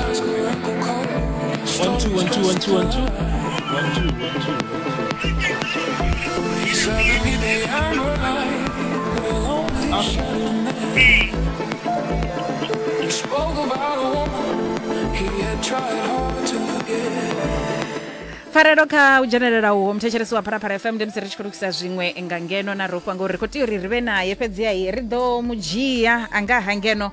One, two, one, two, one, two, one, two. One, two, one, two. He spoke about a woman he had tried hard to forget. pfarelo kha u dzhenelela uho muthetshelesi wa pharapara fm ndi musi ri tshi khou lukisa zwiṅwe nga ngeno na rofha ngori ri khou tea uri ri vhe naye fhedziha ri ḓo mu dzhia a nga ha ngeno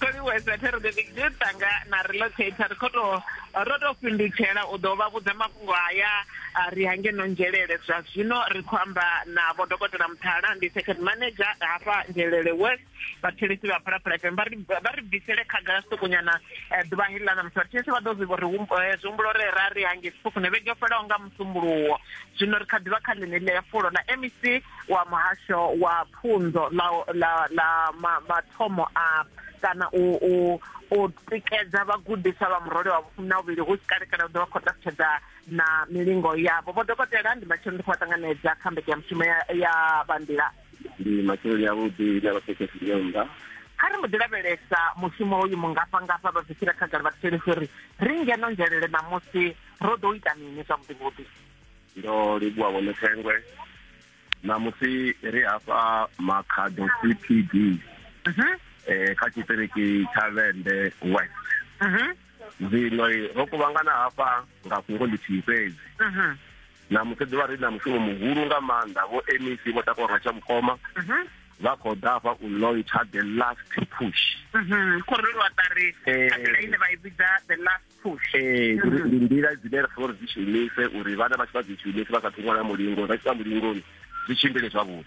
Kholiwesa thero the big dude tanga na relocator ri kho to ro to fhindutshela u ḓo vha vhudza mafhungo haya ri hange no nzhelele zwa zwino ri khou amba na vho dokotela muthala ndi second manager hafha nzhelele west vhathelesi vha phalaphala fm vha ri vha ri bvisele khagala sokonyana eh, ḓuvha hili ḽa ṋamusi vhathelesi vha ḓo zwi vhori eh, zwi humbulo re ra ri hange sifukune vhege fhelaho nga musumbuluwo zwino ri kha ḓivha kha ḽine ḽi ya fulo ḽa mec wa muhasho wa pfunzo la la la mathomo a kana u u u tikedza vhagudiswa vha murole wa vhufumi na vhuvhili hu si kale kana u ḓo vha khou ṱalutshedza na milingo yavho vho dokotela ndi matsheloni ndi khou vha ṱanganedza kha mbeke ya mushumo ya vhanḓila ndi matsheloni avhuḓi na vhathekesi nyonda kha ri mbo ḓi lavhelesa mushumo uyu mungafhangafha vha bvisela khagala vha thuseli uri ri ngeno nzhelele ṋamusi ro ḓo ita mini zwavhuḓivhuḓi ndo livhuwa vhone thengwe ṋamusi ri hafha makhado cpd mhm. eh, kha tshiṱiriki tsha vende west mhm. zwino ro kuvhangana hafha nga fhungo ḽithihi fhedzi mhm. ṋamusi ḓuvha ri na mushumo muhulu nga maanḓa vho mec vho takuwa nga tsha mukoma vha khou ḓa hafha u launcha the last push khorelo wa ṱari a ḓila ine vha i vhidza the last ee ndi nḓila dzine ra funa uri dzi shumise uri vhana vha tshi vha dzi shumise vha sa thu ṅwala mulingo vha tshi vha mulingoni zwi tshimbile zwavhuḓi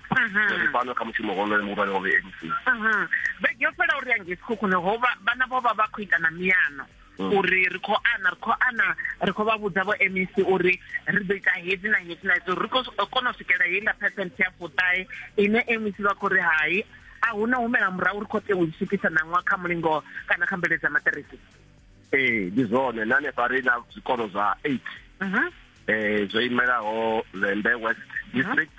ri fano kha mushumo honoyo muhulwane wa vmc vhege yo fhela uri yange sikhukhune ho vhana vho vha vha khou ita na miyano mm. uri ri khou ana ri khou ana ri khou vha vhudza vho mec uri ri ḓo ita hedzi na hedzi na hedzi uri ri khou kona u swikela heiḽa percent ya fuṱahe ine mec vha khou ri hai a hu na humela murahu ri khou tea u swikisa ṋaṅwa kha mulingo kana kha mbeledza maṱiriki ee ndi zwone na hanefha ri na zwikolo zwa eight mhm. eh zwo imelaho lembe west mhm. district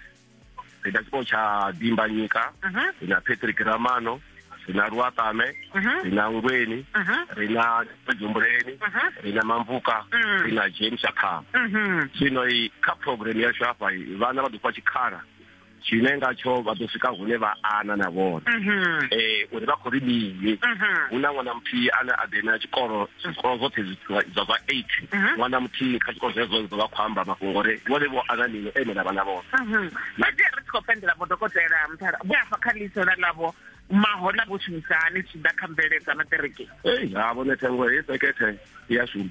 ri na tshikolo tsha dimbanyika mhm. ri na patrick ramano ri na luatame ri na ngweni ri na dzumbuleni ri na mamvuka mm. ri na james akhama zwino kha program yashu hafha vhana vha ḓo fha tshikhala tshine ngatsho vha ḓo swika hune vha ana na vhone mhm. eh uri vha khou ri mini mhm. hu na ṅwana muthihi ane a ḓe na tshikolo zwikolo zwoṱhe zwa zwa eight mhm. ṅwana muthihi kha tshikolo zwezwo zwo vha khou amba mafhungo uri vhone vho ana mini ene na vhana vhone fhedzi ri tshi khou pendela vhodokotela muthala vho afa kha ḽisola ḽavho mahola vho shumisa hani tshi ḓa kha mveledzamaṱereke ei ha vhone thengo he sekethe ya shuma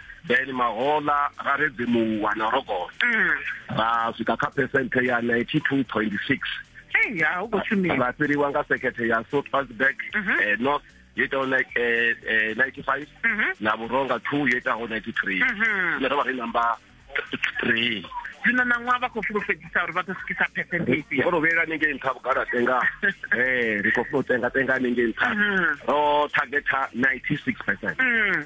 then mahola ra redzemuwa na rogoto mm. ra swika kha percent ya 92.6 ra fhiriwa nga sekhethe ya soutpansburg mm -hmm. eh, north yo itaho eh, eh, 95 mm -hmm. na vhuronga 2 yo itaho 93 mm -hmm. ine ro vha ri namba 3 zwino na ṅwaha vha khou fulufhedzisa uri vha ḓo swikisa percentage vho rovhela ningei nṱha vhugala tenga ee ri khou funa u tenga tenga ningei nṱha ro targeta 96 percent mm.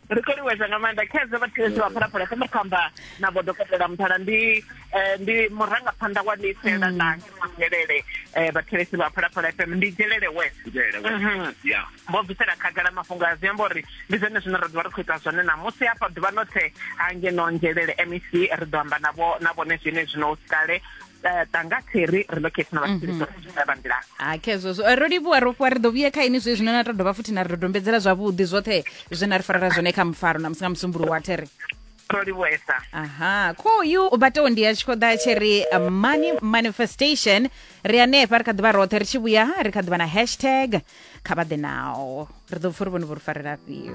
ri khou livhuwesa nga maanḓa khezwo vhathetsho vha phalaphala kha muthu amba na vho dokotela muthala ndi eh, ndi murangaphanḓa wa ḽifhela mm. ḽa ngelele eh, vhathelesi vha phalaphala fm ndi dzhelele west mhm. vho bvisela khagala mafhungo a zwi amba uri ndi zwone zwine ra ḓivha ri khou ita zwone ṋamusi hafha ḓuvha ḽothe hangeno nzhelele mec ri ḓo amba na vhone zwine zwino u si kale eh, tanga theri ri ḽo khethina vha tshiri dzo zwi vha nḓila ha khezwo zwo Eh, ro livhuwa ro fhiwa ri ḓo vhuye kha ini zwe zwino na to dovha futhi na ri dodombedzela zwavhuḓi zwoṱhe zwe na ri farela zwone kha mufaro na musi nga musumbulu wa there ro livhuesa aha kho uyu u batewo ndi ya tshi khou ḓa tshi ri uh, money manifestation ri hanefha ri kha ḓivha roṱhe ri tshi vhuya ha, ri kha ḓivha na hashtag kha vha ḓe nawo ri ḓo pfa uri vhone vho ri farela afhio